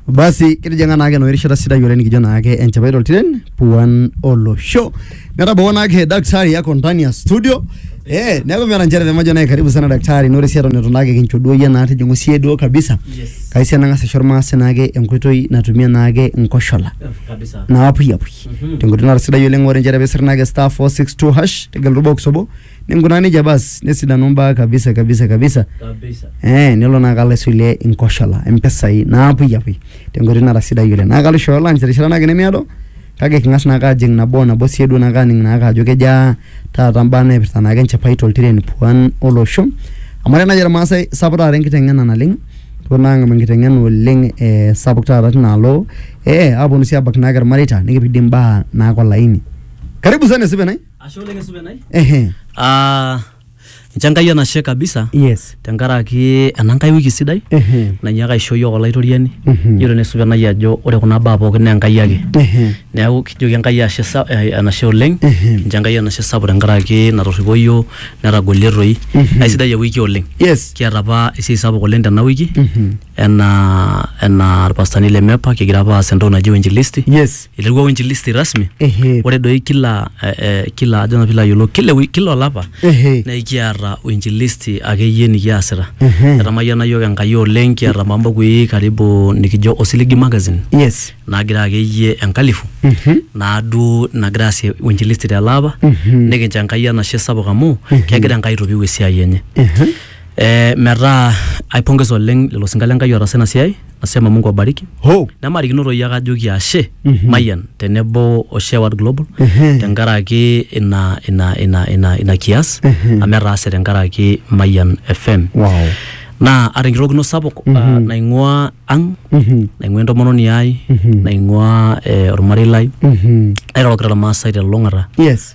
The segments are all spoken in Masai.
Basi kitijing'a naake enoshi rishata sidai oleng nikijo naake enchipai toltiren puan olosho. Netabawua naake daktari yako ndani ya studio. Eh, neeku meeta nchere pemajo naye karibu sana daktari nore sii eton itu naake kincho duo iyie naa tijing'u siye duo kabisa. Yes. Kai sii enang'as aisho irmaasai naake enkoitoi natumie naake nkoshola. kabisa naapuyapui Mhm. tenkoitoi nara sidai oleng ore nchere pisir naake star 462 hash tegelu box obo ninkunaa nejia basi nesidanu imbaa kabisa kabisa kabisa kabisa eh, nelo naa kalo aisulie inkoshola impisai naapuyiapui tenkoitoi nara sidai oleng naa kalo aishooyo lunch terishata naake nemeado kake king'as naake ajing nabo o nabo sii duo naake aning naake ajo kejaa taata mbaa naipirta naake enchipai toltiren puan olosho amu ore naaji irmaasai sapuk taata enkiteng'ena naleng kepuo naa ang'amu enkiteng'ena oleng eh, sapuk taata tinaalo eh, aponu sii abak naake irmareita nikipik dii imbaa naake olaini karibu sana esipenai Ashe oleng esupenai. Ehe. Ah, nche Enkai enashe kabisa Yes. tenkaraki ena nkae wiki sidai Ehe. nanyiaka aisho iyiook olaitoriani Mhm. yiolo nesupenai ajo ore kuna baa pookin naa Enkai ake Ehe. neeku kijoki Enkai ashe sa- eh, enashe oleng Ehe. nche Enkai enashe sapuk tenkaraki natorripo iyiook netagolie toi Mhm. aisidai ewiki oleng Yes. kiata apa esiai sapuk oleng tena wiki Mhm. enaa enaa irpastani le MEPA kigira apa aas entoki naji uinjilisti. Yes. Iterua uinjilisti rasmi. Ehe. Ore doi kila eh, eh, kila ajo naa piilo ayiolou kila ewi- kila olapa Ehe. naa ekiata uinjilisti akeyie nikiasita. Ehe. Etamayiana iyiook Enkai oleng kiata apa mbukui karibu nikijo Osiligi Magazine Yes. naagira akeyie enkalifu Mhm. naaduo nagira aasie uinjilisti tele apa Mhm. nikincho Enkai enashe sapuk amu kegira Enkai aitopiu esiai enye. Ehe. Ee metaa aipongesa oleng lelo sinkan le Nkai otaasa ina siai, nasema Mungu awabariki. Hoo. Nemaarikino toi ake ajoki ashe Mayian tenebo o Share World Global Ehe. tenkaraki ina ina ina ina ina kias Ehe. amu etaase tenkaraki Mayian FM. Wow. Naa aata enkirorokino sapuk ah, naing'uaa ang, Mhm. naing'uaa entomononi ai, Mhm. naing'uaa eh, olmarei lai, Mhm. nairorokita Ilmaasai te lulung'ata. Yes.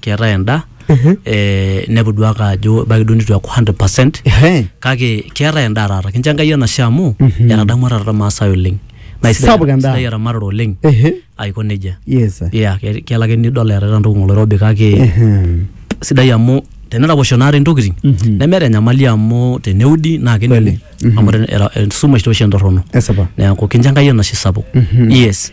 keetae endaa eh, inepu duake ajo ebaiki duo nitu eaku 100 percent Ehe. kake keetae endaa taata kincho enkai enashe amu etadamua taata irmaasai oleng Naa isidai- Sapuk endaa. isidai eramatare oleng Ehe. aiko nejia Yes. yeah, ke- kelo ake nidol eetae entoki ng'oloirobi kake Ehem. sidai amu teneraposho naata intokitin nemeeta enyamali amu teneudi naa kening Kweli. amu ten- era- esumash tooshi entorrono Esipa. neeku kincho enkai enashe sapuk yes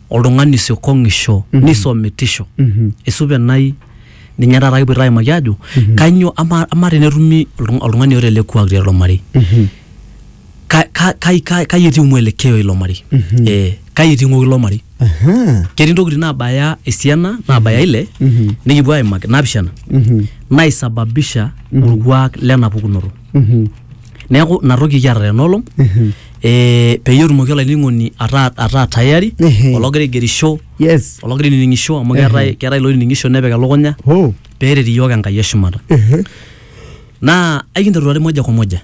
oltung'ani isiokong'isho mm-hmm. nisomitisho mm-hmm. esupe nai ninye taata kipoito aimaki ajo mm-hmm. kanyio ama, ama tenetumi oltung'ani oota ele kuak tiatua marei kai etii mwelekeo ilo marei eh, kai etii ng'oki ilo marei ketii ntokitin naabaya esiana naabaya ile nikipuo aimaki napishana naisababisha orkuak lena pukunoto neeku ina toki kiata tena olong eh, peyie etumoki olainining'oni ataa ataa tayari Ehe. ologira aigerisho yes ologira ainining'isho amu keetae keetae iloinining'isho nepik elukunya oh peeret iyiook enkai eshumata ehe naa aikinteru taa moja kwa moja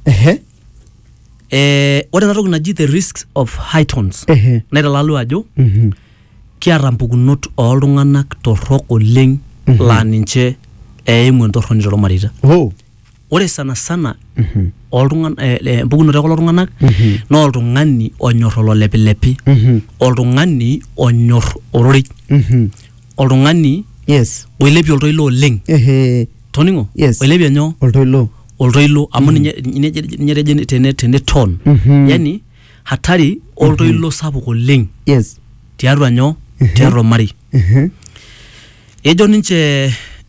ehe eh, ore ena toki naji the risks of high tones ehe naitalalu ajo Mhm. kiata mpukunot ooltung'anak torrok oleng laa ninche eimu entorroni tormareita oh ore sana sana oltung'an- eh, eh, empukunoto ekulo tung'anak naa oltung'ani onyor ololepilepi oltung'ani onyor ororei oltung'ani yes oilepie oltoilo oleng ehe toning'o Yes. oilepie nyoo oltoilo oltoilo amu ninye ninye ninye etejo tene tene ton Mhm. yani hatari oltoilo sapuk oleng yes tiatua nyoo tiatua ormarei ehe ejo ninche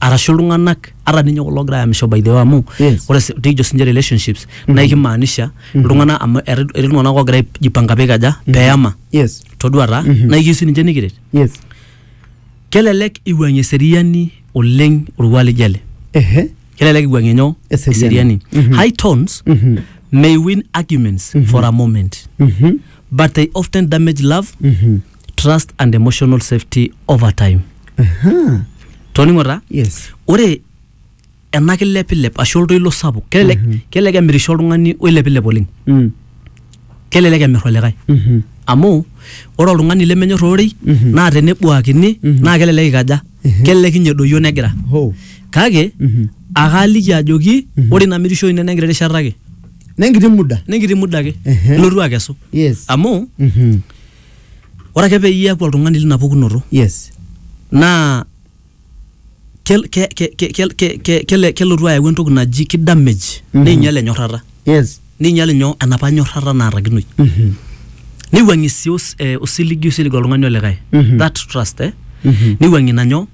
arashu iltung'anak ata ninye kulo ogira ayamisho by the way amu Yes. ore si- tekijo sinche relationships naa ikimaanisha iltung'anak amu etii etii iltung'anak ogira aijipanga pikaja peyama yes toduata naa ikiyieu sininche nikiret yes kelelek iwuang'ie eseriani oleng orkuak lijo ele ehe kelelek iwuang'ie nyoo Eseriani. Mhm. high tones Mhm. may win arguments for a moment Mhm. but they often damage love Mhm. trust and emotional safety over time Aha. toningo taa yes ore ena kilepilep ashu oltoilo sapuk kelelek kelelek emirisho oltung'ani oilepilep oleng Mm. kelelek emir olikae Mhm. amu ore oltung'ani lemenyor ororei Mhm. naa tenebuakini Mhm. naa kelelek ikaja Mhm. kelelek inye edoyio negira Ho. kake Mhm. akaaliki ajoki Mhm. ore ina mirisho ino nenkiti rishata ake nenkiti muda nenkiti muda ake Ehe. ilotu akesu yes amu Mhm. Ore ake peyie iaku oltung'ani lina pukunoto Yes. naa kel, ke, ke, ke, kel, ke, ke, kele- kelotu ayau entoki naji ki damage Mhm. neinyal enyorrata Yes. neinyal inyo enapa nyorrata naatakinoi Mhm. neiwuang'ie sii os, eh, osiligi oisilig oltung'ani olikae Mhm. that trust eh Mhm. neiwuang'ie ina nyoo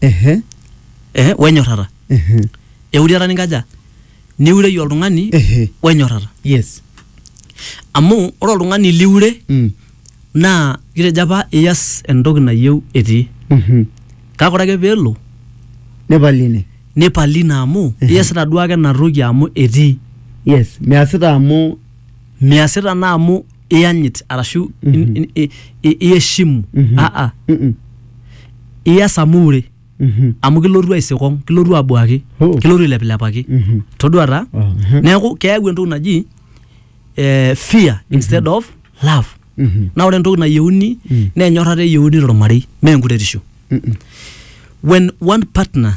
Ehe. eh, wenyorrata Ehe. euriata ninkaja niureyie oltung'ani Ehe. wenyorrata Yes. amu ore oltung'ani liure Mm. naa kitejo apa iyas entoki nayieu etii Mhm. kake ore ake peelo Nepal ine. nipali ina amu Ehe. iyasita duo ake ina toki amu etii Yes. Measita amu miasita naa amu iyanyit arashu in- in- i- i- iheshimu aa Mm-mm. ias amu ure Mhm. amu kilotu aisikong kilotu abuaki Oh. kilotu ailepilepaki Mhm. todua taa Oh, mhm. neeku keyau entoki naji eh, fear instead of love Mhm. naa ore entoki nayieuni Mm. naa enyorrata eyieuni tormarei mee enkuretisho Mm-mm. when one partner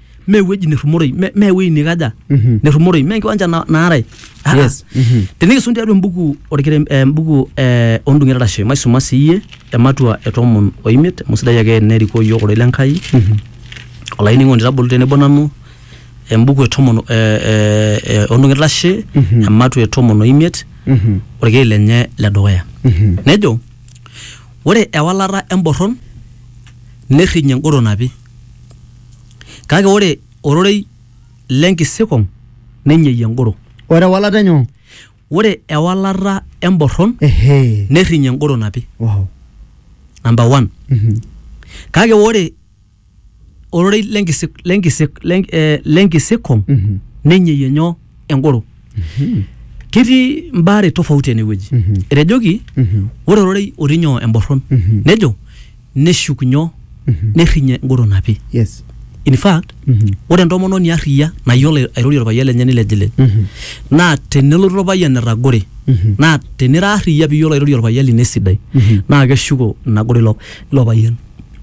mee ewueji nerrumoroi me- mee ewueji nikaja Mhm. nerrumoroi mee enkiwanja na- naarai Ah, Yes. ah. Mhm. tenikisum tiatua embuku orkerem eh, embuku eh, ondung'et arashe maisuma siiyie ematua e tomon oimiet amu sidai ake nerikoo yiok ororei le Nkai olainining'oni tabolu tenebo nanu embuku e tomon eh, eh, eh, ondung'et arashe Mhm. ematua e tomon oimiet Mhm. orkei lenye le dukuya Mhm. nejo ore ewalata emborron nerrinye engoro napi Kake ore ororei le nkisikong nenyeyie engoro. Ore ewalata enyoo? Ore ewalata emborron nerrinyie engoro napi. Number one. Kake ore ororei le nkisikong nenyeyie nyoo? engoro ketii mbaa are tofauti enewueji Mhm. etejoki Mhm. ore ororei otii nyoo emborron Mhm. nejo neshuk nyoo Mhm. nerrinye engoro napi yes in fact Mhm. ore entomononi arriyia nayiolo airorie orpayian lenye nilejilej Mhm. naa tenelotu orpayian etagore Mhm. naa tenira arriyia piyiolo airorie orpayian lino esidai Mhm. naa keshuko ina goro ilo ilo payian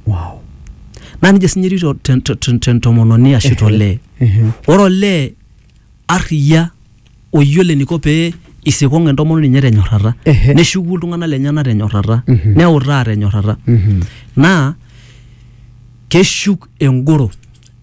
wow naa nejia sinye etiu to- te- te- te- tentomononi ashu tolee Mhm. ore olee arriyia oyiolo eniko pee isikong entomononi enye tenyorrata Ehe. neshuku iltung'anak lenyenak tenyorrata Mhm. neutaa tenyorrata Mhm. naa keshuk engoro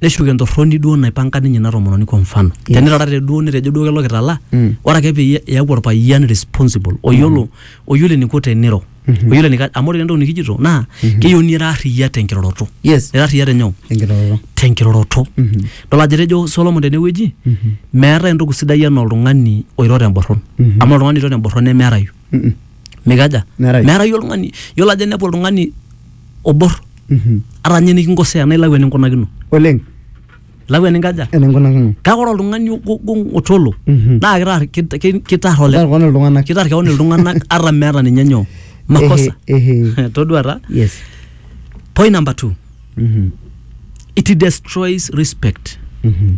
neshuk entorroni duo naipanga ninye ina tomononi kwa mfano Yes. tenitarate duo nitejo duo kelo kitala Mm. ore ake peyie eeku orpayian responsible oyiolo oyiolo eniko teniro Mhm. oyiolo enika amu ore entoki nikijito naa keyieu nira arriyia tenkiroroto Yes. ira arriyia tenyoo Enkiroroto. tenkiroroto Mhm. dol ajo etejo Solomon tenewueji Mhm. meetae entoki sidai enaa oltung'ani oiro temborron Mhm. amu oltung'ani oiro temborron nemeerayu Mhm. mikaja Meerayu. meerayu oltung'ani yiolo ajo inepu oltung'ani obor Mhm. ata ninye nikinkosea naa ilau eninkunakino Oleng. lau eninkaja eninkunakino kake ore oltung'ani ogong otolo Mhm. naa kitar kit- ki- kitar ole Kitar keon iltung'anak. kitar keon iltung'anak ata meeta ninye nyoo makosa Ehe, ehe. todua taa yes point number two Mhm, it destroys respect mhm.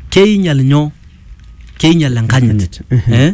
keinyal nyoo keinyal enkanyit Enkanyit, ehe. eh?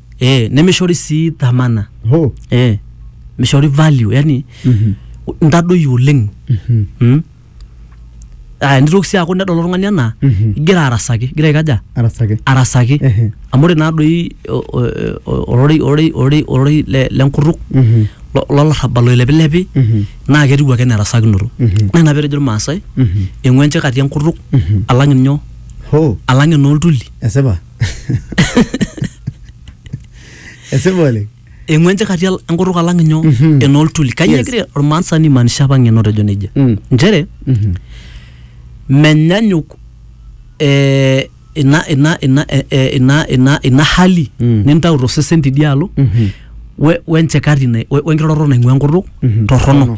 eh, nemishori sii dhamana Ho. eh, mishori value yani Mhm. ntadoyio oleng Mhm. mm? ah, nitoki sii aaku nedol oltung'ani anaa Mhm. igira arasaki igira aikaja Arasaki. arasaki Ehe. amu ore naadoi o- o- o- ororei ororei ororei ororei le- lenkutuk Mhm. lo- lolarrabal oilepilepi Mhm. naa ketiu ake nerasakinoto Mhm. naa ina petejo irmaasai Mhm. eng'uenche kati enkutuk Mhm. alang inyoo Ho. alang enooltuli Esipa. esipa oleng eng'uan chakati al- enkutuk alang inyo Mhm. enooltuli kanyio Yes. egira ormaasani maanisha apa ng'eno tejo nejia Mm. nchere Mhm. menyanyuk eh, ina ina ina eh, eh, ina ina ina hali Mm. nintau tosesen tidialo Mhm. we- wenchekati na- we- wenkiroroto naing'ua enkutuk Mhm. torrono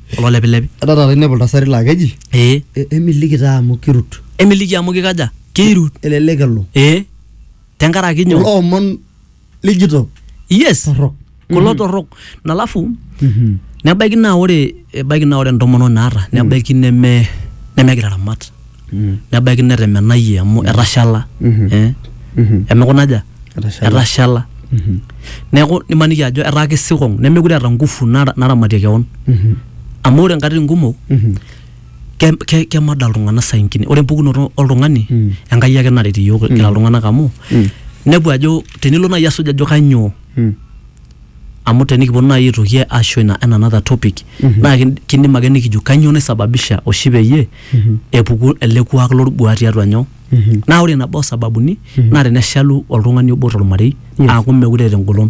kulo lepilepi Etaa taata inepu iltasati laa keji ee "E- emiliki taa amu kirut. emiliki amu kikaja keirut Elelek elo. ee tenkaraki Kulo nyoo omon lijito yes torrok. kulo torrok nalafu Mhm. nebaiki naa ore ebaiki naa ore entomononi naata nebaiki neme nemegira aramat nebaiki netemenayie amu etashala eh, emekuna aja Etashala. etashala neeku nimaniki ajo etaa kisikong nemekure eeta ngufu nara- naramatie kewon amu ore nkatitin kumok ke- ke- kemada iltung'anak saa ingine ore empukunoto oltung'ani enkai ake naret iyiok kira iltung'anak amu inepu ajo tenilo naaji asuj ajo kainyoo amu tenikiponu naaji aitoki asho ina en another topic naa kin- kindim ake nikijo kanyoo naisababisha oshi peyie epuku ele kuak lolbuaa tiatua nyoo naa ore nabo osababuni naa teneshalu oltung'ani obo tormarei Yes. aaku mekure eeta engolon